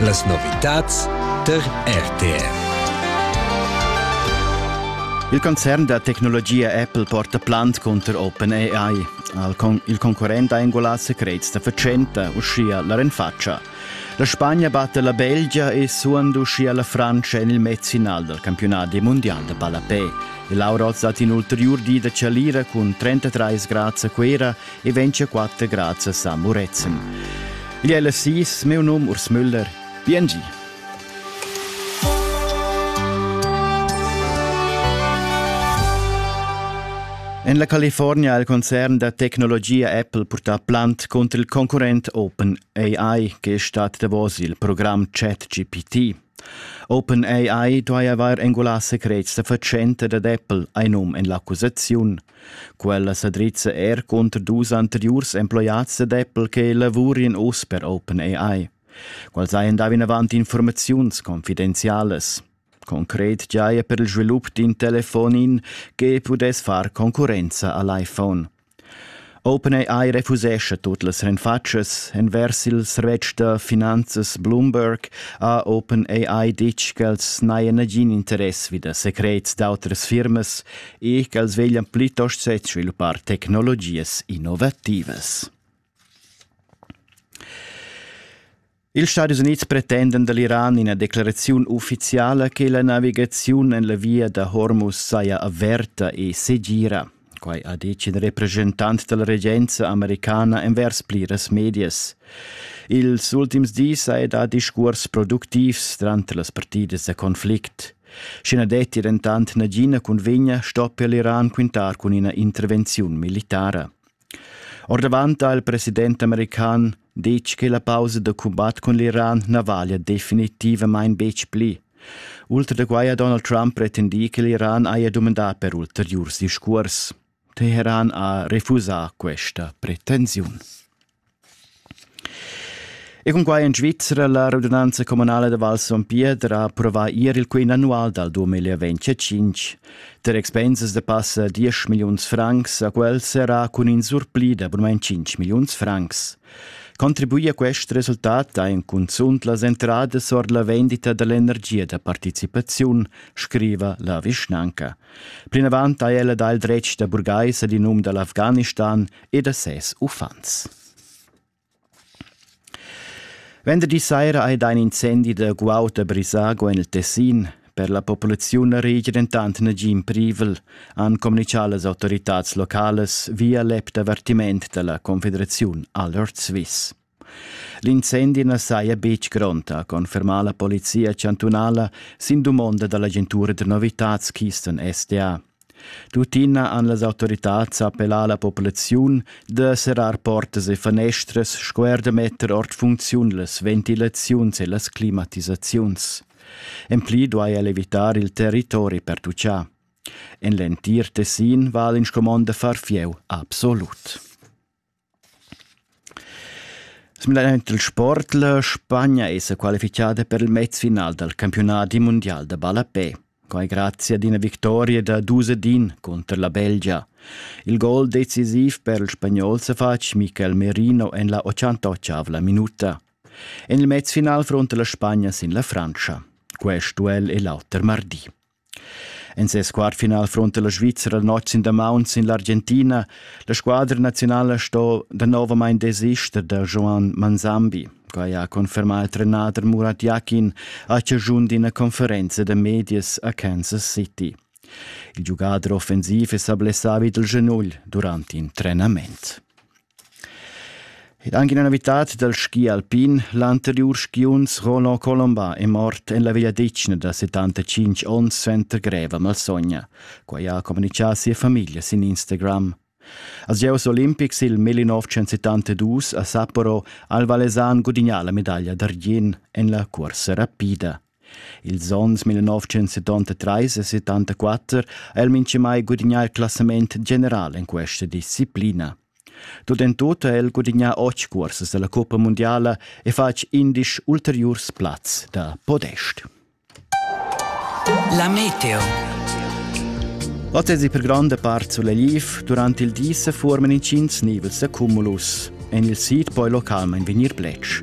Las novitads tar RTR. Il concern da tecnologia Apple porta plant cunter OpenAI. Il concurrent ha engulà secrets da fatschenta, uschia la renfatscha. La Spagna batta la Belgia e suand uschia la Frantscha en il mezfinal dal campionat mundial da ballapè. E Laura Hoz dat in ulteriur di da chalira cun 33 grads a Cuera e ventscha quatter grazias a Murezzan. Igl è la sis, meu num Urs Müller. Bien gi! En la California ha il concern da tecnologia Apple purtà plant cunter il concurrent OpenAI che stat davos il program ChatGPT. OpenAI duai avair engulà secrets da fatschenta dad Apple, ein num en l'accusaziun. Quella sa drizza er cunter dus anteriurs emploiats da Apple che lavurin uss per OpenAI. Quels hajan dà vinavant informaziuns confidenzialas. Concret giaja per il svilup d'in telefonin che pudess far concurrenza a l'iPhone. OpenAI refusescha tut las renfatschas. Envers il servetsch da finanzas Bloomberg ha OpenAI ditg ch'els n'hajan nagin interess vi da secrets d'autras firmas e ch'els veglian plitost sezvilupar tecnologias innovativas. Ils Stadis Unids pretendan dall'Iran ina declaraziun ufficiala che la navigaziun en la via da Hormuz saja averta e segira. Quai ha detg in representant dalla regenza americana envers pliras medias. Ils ultims dis ha er dà discurs productivs tranter las partidas da conflict. Schi na detti dentant nagina cunvegna stoppia l'Iran quintar cun ina intervenziun militara. Ordavant ha il president american detg che la pausa da cumbat cun l'Iran na valia definitivamain betg pli. Ultra da quai ha Donald Trump pretendì che l'Iran haja dumandà per ulteriurs discurs. Teheran ha refusà questa pretensiun. E con quai en Svizzera la radunanza comunale de Val Son Pietro ha approvato ieri il quin annual dal 2025. Der Expenses de passa 10 millions francs a quel serà cun in surpli de abonnement 5 millions francs. Contribuì a questo risultat ein cunzunt las entradas or la vendita dell'energia da participaziun, scriva la vischnanca. Plinavant ha ella dà il dretg da burgais ad in um da l'Afghanistan e da ses uffants. Venderdi saira hai dà in incendi da guaud a Brisago en il Tessin. Per la populaziun na regia dentant nagin privel, han communitgà las autoritads localas via l'app d'avertiment da la Confederaziun Alert Swiss. L'incendi na saja betg grond, ha confermà la polizia chantunala sin dumonda da l'agentura da novitads Kisten SDA. Tuttina han las autoritads appellà la populaziun da serrar portas e fanestras sco er da metter ord funcziun las ventilaziuns e las climatisaziuns. En pli duai el evitar il territori per tucciar. En l'entir Tessin va l'inscumond da far fieu absolut. Simplamain il sport. La Spagna è sa qualifichada per il mezfinal dal campiunadi mundial da ballapè. Quai grazie ad ina victoria da dus ed in cunter la Belgia. Il gol decisiv per il spagnol sa fatg Michael Merino en la 88 minuta. En il mezfinal fronta la Spagna sin la Frantscha. Quest duell è l'auter mardi. En ses quart final fronta la Svizra la notg sin damaun sin l'Argentina. La squadra naziunala sto danovamain desister da Joan Manzambi. Quai ha confermà il trenader Murat Yakin a chaschun d'ina conferenza da medias a Kansas City. Il giugader offensiv è sa blessà vid il genugl durant in trenament. Ed anche una novità dal ski alpin, l'anteriur skiunz Roland Colombin è mort en la vegliadetgna da 75 onns suenter greva malsogna. Quai ha communitgà sia famiglia sin Instagram. Als Gieus olimpics il 1972 a Sapporo ha il Valesan gudignà la medaglia d'argient en la cursa rapida. Ils onns 1973 e 74 ha el minchamai gudignà il classament general in questa disciplina. Tut en tut ha el gudignà otg cursas da la Coppa mundiala e fatg indisch ulteriurs plazs da podest. La meteo. Ottesi per gronda part sulla Liv durant il di se forman inschins nivels da cumulus. En il sid poi localmain vegnir bletsch.